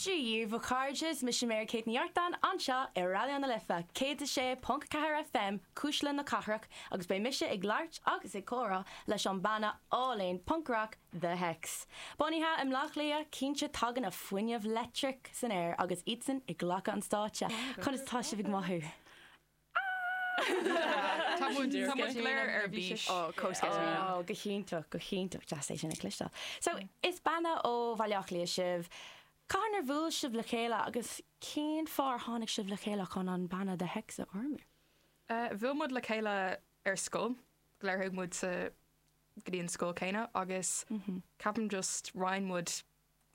Dia daoibh a chairde is mise Mary Kate Ní Artáin anseo i Raidío na Life 106.4 FM Cuisle na Cathrach agus beidh mise ag labhairt agus ag comhrá leis an banna álainn punc-rac The Hex. Bunaithe i mBleá Cliath, cinnte tagann an fuinneamh leictreach san aer agus iadsan ag glacadh an stáitse. Conas atá sibh ag mothú? Tá muid go léir ar bís. Oh, go hiontach, go hiontach. Deas é sin a chloisteáil. So, is banna ó Bhaile Átha Cliath sibh. Cathain ar bhuail sibh le chéile agus cén fáth ar tháinig sibh le chéile chun an banna The Hex a fhoirmiú? Bhuail muid le chéile ar scoil, go léir, chuaigh muid sa, go dtí an scoil céanna agus ceapaim just roinn muid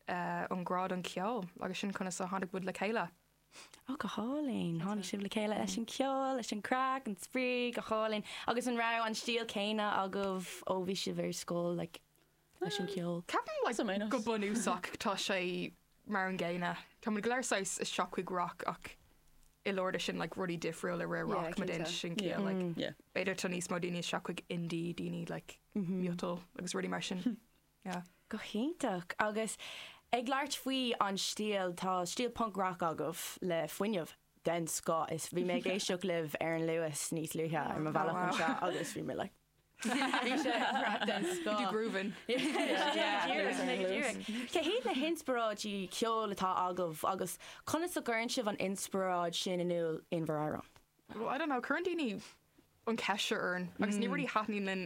an grá don cheol agus sin conas a tháinig muid le chéile. Ó, go hálainn. Tháinig sibh le chéile leis an ceol, leis an craic, an spraoi, go hálainn. Agus an raibh an stíl céanna agaibh ó bhí sibh ar scoil, like, leis an cheol? Ceapaim, like, saghas. go bunúsach tá sé mar an gcéanna. Tá muid go léir saghas isteach chuig rock ach i lár de sin, like, rudaí difriúla ar Yeah, rock má cinnte. dhéanann sé sin ciall, like, Yeah. b'fhéidir tá níos mó daoine isteach chuig indie, daoine, like, miotal agus rudaí mar sin. Yeah. Go hiontach. Agus ag labhairt faoi an stíl, tá stíl punc rac agaibh le fuinneamh den scoth is bhí mé ag éisteacht libh ar an Luas níos luaithe ar mo bhealach anseo agus bhí mé like bhí sé thar a bheith den scoth. Bhí tú grooving. Cé hiad na hinspioráidí ceoil atá agaibh agus conas a gcuireann sibh an inspioráid sin in iúl in bhur amhráin? Well I don't know, cuireann daoine an ceist seo orainn agus ní really thaitníonn linn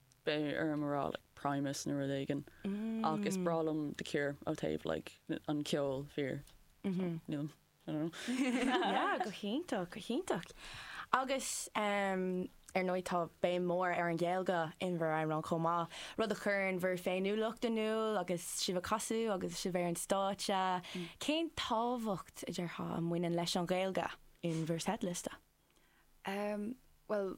beidh orm a rá like Primus nó rud éigin ach is breá liom The Cure ó taobh like an ceol fíor so níl I don't know. Yeah go hiontach go hiontach agus em ar ndóigh tá béim mór ar an Ghaeilge in bhur amhráin chomh maith rud a chuireann bhur féiniúlacht in iúl agus sibh a' casadh agus sibh ar an stáitse. Cén tábhacht a déarfá a bhaineann leis an Ghaeilge in bhur seitliosta? Em bhuel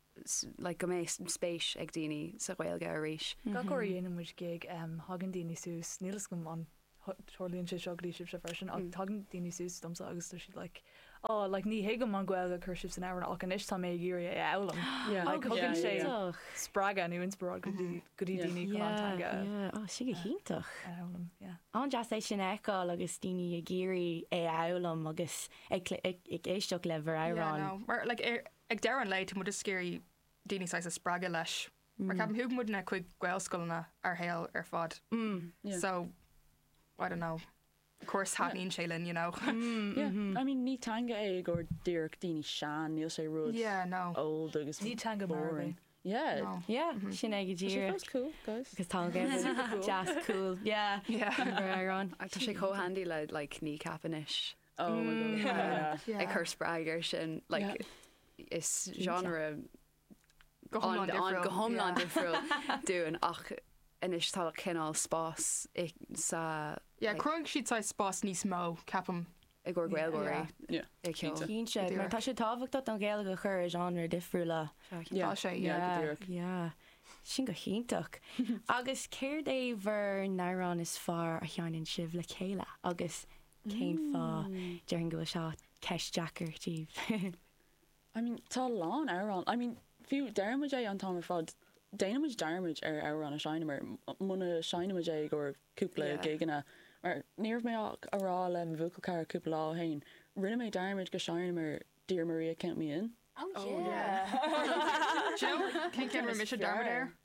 like go mbeidh spéis ag daoine sa Ghaeilge arís. Gach uair a dhéanann muid gig, tagann daoine suas, níl 'fhios agam an tarlaíonn sé seo go dtí sibhse freisin, ach tagann daoine suas domsa agus tá siad like oh like ní thuigim an Ghaeilge a chuir sibh san amhrán ach anois tá mé ag iarraidh é a fhoghlaim. Like thugann sé spreagadh nó inspioráid go dtí go dtí daoine chun an teanga a fhoghlaim. Nach deas é sin a fheiceáil agus daoine ag iarraidh é a fhoghlaim agus ag éisteacht le bhur amhrán. Yeah no mar like ar Ag deireadh an lae, tá muid ag iarraidh daoine saghas a spreagadh leis mar ceapaim thúg muidne chuig gaelscoileanna ár saol ar fad so I don't know course thaitníonn sé linn you know. I mean ní teanga é gur díreach daoine sean níl sé rud yeah no old agus ní teanga boring yeah no. yeah mm -hmm. sin ag díir that's cool guys because tá jazz cool yeah yeah ar an tá sé có handy le like ní capanis Oh my god yeah yeah yeah ag cur spreag air sin like is genre go hiomlán difriúil go hiomlán difriúil dúinn ach anois tá cineál spás sa yeah chruthaigh siad saghas spás níos mó ceapaim i gcomhair Gaeilgeoirí yeah cinnte cinnte mar tá sé tábhachtach don Ghaeilge a chur i genre difriúla tá sé yeah go díreach yeah sin go hiontach agus céard é bhur n-amhrán is fearr a sheinneann sibh le chéile agus Cén fáth? Déarfainn go bhfuil seo ceist deacair daoibh. I mean, tá a lán amhrán, I mean, fiú, deireann muid é an t-am ar fad, déanann muid dearmad ar amhrán a sheinneamar, muna seinneann muid é i gcomhair cúpla gigeanna, mar ní raibh mé ach ag rá le mo bhuachaill cara cúpla lá ó shin, rinne mé dearmad go sheinneamar Dear Maria Count Me In. Oh yeah! Do you know cén ceann a raibh mise ag dearmad air?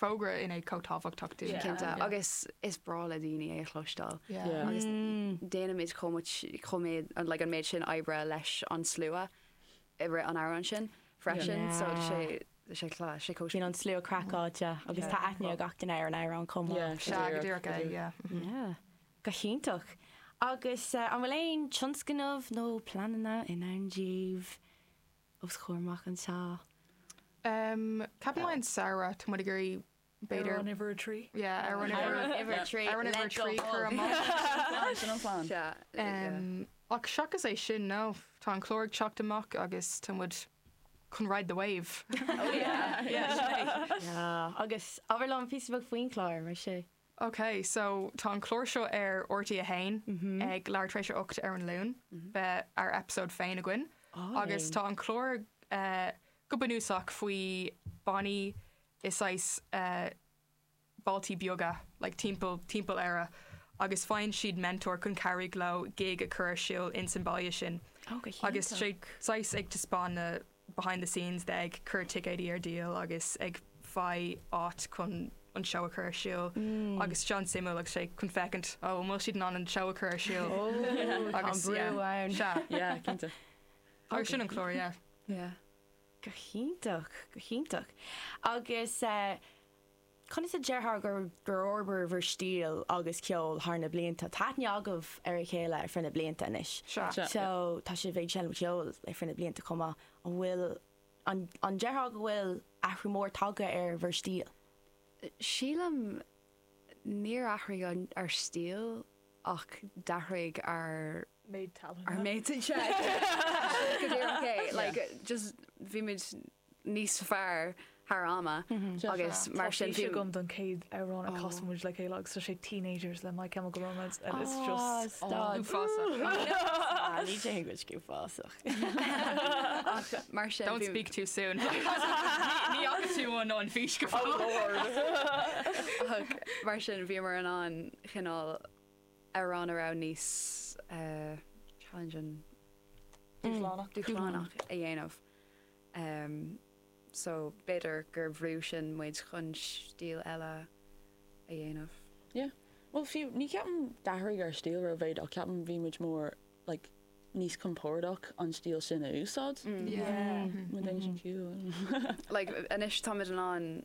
fógra in é chomh tábhachtach dúinn. Cinnte, agus is breá le daoine é a chloisteáil. Agus déanaimid chomh much, chomh méad, like an méid sin oibre leis an slua i rith an amhráin sin freisin, so tá sé, tá sé class, sé chomh. Bíonn an slua craiceáilte agus tá aithne ag gach duine ar an amhrán chomh maith. Yeah, Sea, go díreach é, yeah. Yeah, go hiontach. Agus an bhfuil aon tionscnamh nó pleananna i ndán daoibh? os comhair amach anseo. Em, ceapaim i mí an samhradh, tá muid ag iarraidh b'fhéidir. Ar an uimhir a trí? Yeah, ar an uimhir. Ar an uimhir a trí. Ar an uimhir a trí, cur amach. Sin an plan. Sea, em, ach seachas é sin, no, tá an clár ag teacht amach agus tá muid chun ride the wave. Oh yeah, yeah, sin é. Yeah, agus abair liom píosa beag faoin chlár, mar sin. OK, so tá an clár seo ar RTÉ 1 ag leath tar éis a 8 ar an Luan, beidh ár eipeasóid féin againn agus tá an clár go bunúsach faoi bannaí i saghas bailtí beaga like timpeall timpeall Éire agus faigheann siad mentor chun cabhraigh leo gig a chur ar siúl insan baile sin. Ó go hiontach. Agus tá sé saghas ag taispeáin na behind the scenes de ag cur ticéidí ar díol agus ag faigh áit chun an seó a chur ar siúl agus tá sé an-suimiúil agus sé chun féachaint an bhfuil siad in ann an seó a chur ar siúl agus yeah ann sea yeah cinnte agus sin an clár yeah yeah go hiontach go hiontach agus eh Conas a déarfá gur fhorbair bhur stíl agus ceol thar na blianta? Tá aithne agaibh ar a chéile ar feadh na blianta anois. Sure, yeah. So, tá sibh ag seinm ceoil ar feadh na blianta chomh maith. An bhfuil, an, an déarfá go bhfuil athrú mór tagtha ar bhur stíl? Sílim, níor athraigh an, ár stíl ach d'athraigh ár, Méid tallainne. ár méid, yeah, yeah. Go díreach é, like, just, bhí muid níos fearr thar ama agus mar sin bhí. Tá fís agam don chéad amhrán a chas muid le chéile agus tá sé Teenagers le My Chemical Romance and it's just uafásach. Ní déarfadh muid go uafásach. Ach mar sin bhí. Don't speak too soon. Ní fhaca tú an an fís go fóill. Oh lord. Ach mar sin bhíomar in ann cineál amhrán a raibh níos challenging, dúshlánach, a dhéanamh. so b'fhéidir gur bhrú sin muid chun stíl eile a dhéanamh. Yeah. Bhuel, fiú, ní ceapaim d'athraigh ár stíl rómhéid ach ceapaim bhí muid mór, like, níos compordach an stíl sin a úsáid. Yeah. Má dhéanann sin ciall. Like, anois táimid in ann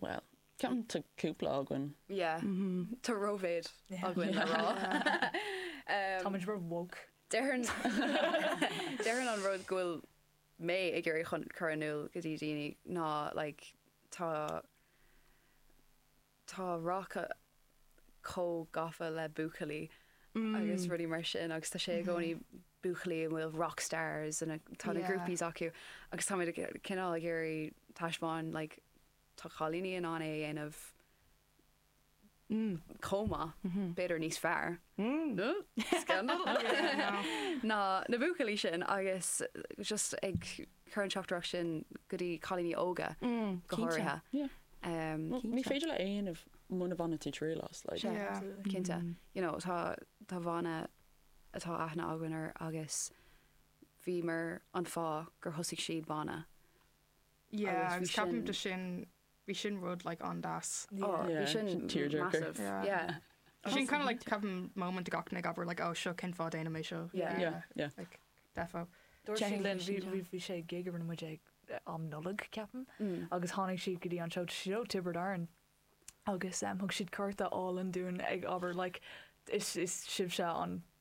Bhuel, ceapaim tá cúpla againn. Yeah, tá rómhéid againn le rá. Táimid ró woke. Déarfainn an rud go bhfuil mé ag iarraidh chun cur in iúl go dtí daoine ná like tá, tá rac chomh gafa le buachaillí agus rudaí mar sin agus tá sé i gcónaí buachaillí a bhfuil rock stars and tá na groupies acu agus táimid cineál ag iarraidh taispeáin like tá cailíní in ann é a dhéanamh chomh maith, b'fhéidir níos fearr, scandal! ná na buachaillí sin agus just ag. cur an teachtaireacht sin go dtí cailíní óga go háirithe. Ní féidir leat muna bhaineann tú triail as. Cinnte. You know tá tá banna atá aithne againn ar agus bhíomar an fáth gur thosaigh siad banna. Yeah, agus ceapaim de sin Bhí sin rud like an-deas. Yeah, bhí sin tearjerker. Yeah. Sin kind of like ceapaim moment gach duine ag abair like oh seo cén fáth déanaim mé seo. Yeah. Yeah, yeah. Like defo. Dúirt siad linn bhí bhí bhí sé gig a rinne muid ag am Nollag ceapaim agus tháinig siad go dtí an seó ó Tiobraid Árann agus thug siad cárta álainn dúinn ag abair like is is sibhse an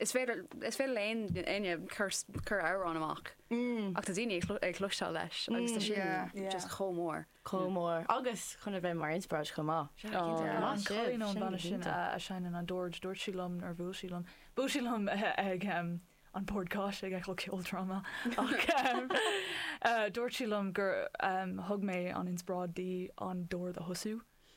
Is féidir is féidir le éinne cur cur amhrán amach ach tá daoine ag cloisteáil leis agus tá sin just chomh mór. Chomh mór agus chun a bheith mar inspioráid chomh maith. An cailín ón bhanna sin a seineann an dord, dúirt sí liom nuair a bhuail sí liom, bhuail sí liom ag an bord cáis ag Féile Ceoldráma ach dúirt sí liom gur thug mé an inspioráid di an dord a thosú.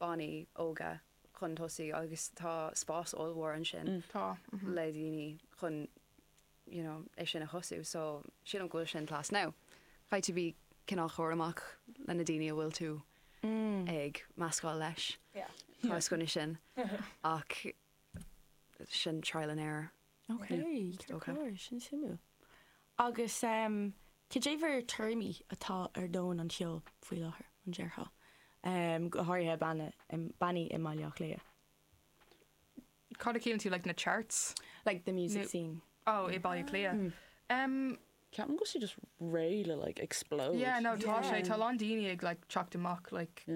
bannaí óga chun tosaigh agus tá spás ollmhór ansin le daoine chun you know é sin a thosú so sílim go bhfuil sin class now caithfidh tú bheith cineál cúramach leis na daoine a bhfuil tú ag meascáil leis yeah tá 's cinnte sin ach sin trial and error. Ok, ceart go leor, sin suimiúil. Agus cad é bhur dtuairimí atá ar dhomhan an cheoil faoi láthair, an ndéarfá? Go háirithe bannaí i mBaile Átha Cliath. Cad a chiallaíonn tú, like na charts? Like the music scene. Oh, i Baile Átha Cliath. Ceapaim go just réidh le like explode. Yeah no tá sé tá a lán daoine ag like teacht amach like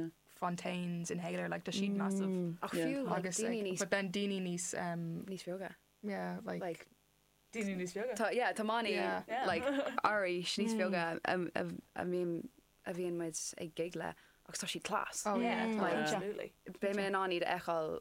fontaines inhaler like tá siad massive Ach fiú like daoine níos but then daoine níos um níos beaga yeah like like daoine níos beaga tá yeah tá bannaí yeah like arís níos beaga a a mbíonn a bhíonn muid ag gig le agus tá siad class oh yeah tá muid absolutely beidh mé in ann iad a fheiceáil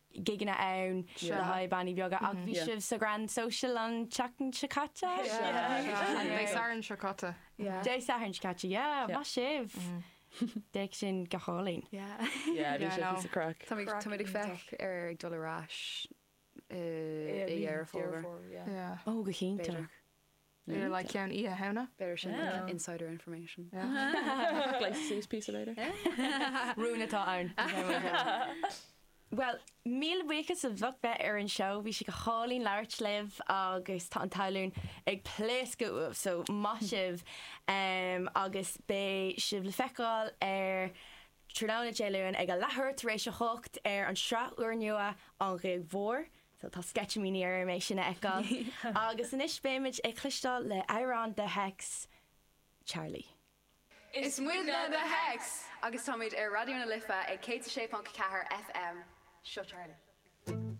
gigeanna ann le haghaidh bannaí beaga ach bhí sibh sa Grand Social an tseachtain seo caite? Dé Sathairn seo caite. Dé Sathairn seo caite, yeah, maith sibh! D'fhéach sin go hálainn. Yeah, bhí sé píosa craic. Tá muid ag féachaint ar ag dul ar ais i nDeireadh Fómhair. Ó, go cinnte. They're like ceann Oíche Shamhna. B'fhéidir sin like Oh. insider information. Like sweet pizza later. Rún atá ann. Bhuel, míle buíochas as ucht a bheith ar an seó, bhí sé go hálainn labhairt libh agus tá an tallann ag pléascadh uaibh, so maith sibh em, agus beidh sibh le feiceáil ar tráthnóna Dé Luain ag a leathuair tar éis a hocht ar an sraith úrnua An Ghig Mhór. So tá sceitimíní orm é sin a fheiceáil. Agus anois beimid ag cloisteáil le amhrán The Hex, Charlie. Is muidne The Hex! Agus táimid ar Raidió na Life ag 106.4 FM. Seo Charlie.